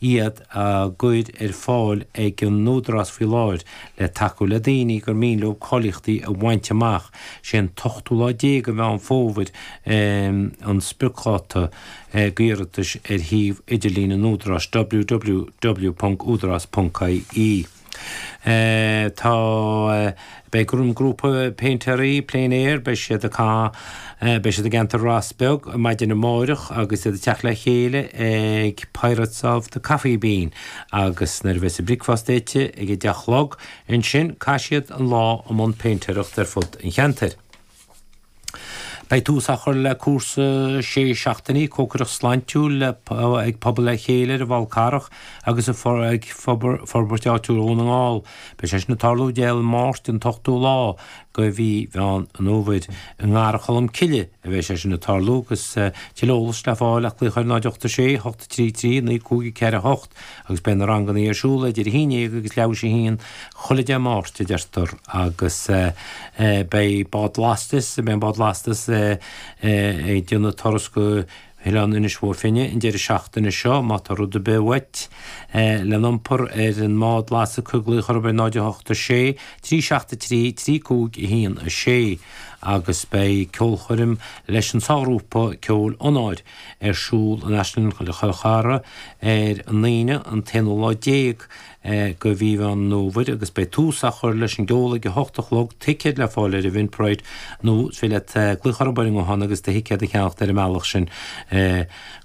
iad á gcur ar fáil ag an Údarás faoi láthair le tacú le daoine gur mian leo cáilíochtaí a bhaint amach. Sé an t-ochtú lá déag de Mheán Fómhair an spriocdháta d'iarratais ar shuíomh idirlín an Údaráis, www.udaras.ie. Tá, beidh grúpa péintéaraí plein air, beidh siad a ca, beidh siad i gceantar Ros Beag maidin amáireach agus iad ag teacht le chéile ag Pirates of the Coffee Bean agus nuair a bheas an bricfeasta ite ag a deich a chlog ansin caithfidh siad an lá i mbun péintéireacht ar fud an cheantair. Beidh tús á chur le cúrsa sé seachtainí cócaireacht shláintiúil ag Pobal le Chéile ar an bhFál Carrach agus ag Forbairt Áitiúil Dhún na nGall. Beidh sé sin ag tarlú Dé Máirt an t-ochtú lá de mhí Mheán an Fhómhair. I nGarraí Cholm Cille a bheas sé sin ag tarlú agus tuilleadh eolais le fáil ach glaoch ar 0 8 6 8 3 3 9 5 4 8. agus beidh na rangannaí ar siúl idir 11 agus leathuair th'éis a haon chuile Dé Máirt, a deirtear, agus beidh bád lastais, beidh bád lastais ag déanamh turas go hOileán Inis Bó Finne an deireadh seachtaine seo, má tá rud ar bith uait lena iompar ar an mbád lastais cuir glaoch orthu ar 08 6 373 3 5 1 6 agus beidh ceolchoirm leis an sárghrúpa ceoil Onóir. ar siúl in Áislann Chill Chartha ar an Aoine an t-aonú lá déag de mhí Mheán an Fhómhair agus beidh tús á chur leis an gceol ag a hocht a chlog. Ticéid le fáil ar Eventbrite nó is féidir leat glaoch orthu ar an nguthán agus do thicéad a cheannacht ar an mbealach sin.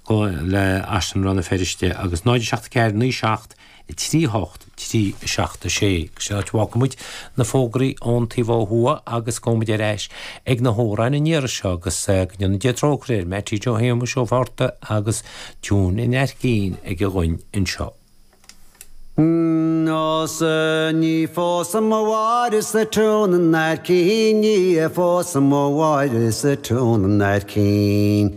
Glaoch ar Áislann Rann na Feirste agus 0, 7, 4, 9, 7, 3 8 3 7 6 Sé an áit a bhfágfaidh muid na fógraí ón taobh ó thuaidh agus gabhfaidh muid ar ais ag na hamhráin an iarraidh seo agus go ndéana Dia trócaire ar Mattie Joe Shéamuis Ó Fátharta agus An Túirnín Lín aige dhúinn anseo. Nós Ní phósfaidh mo mháire sa tiún i neart cinn Ní phósfaidh mo mháire sa tiún i neart cinn.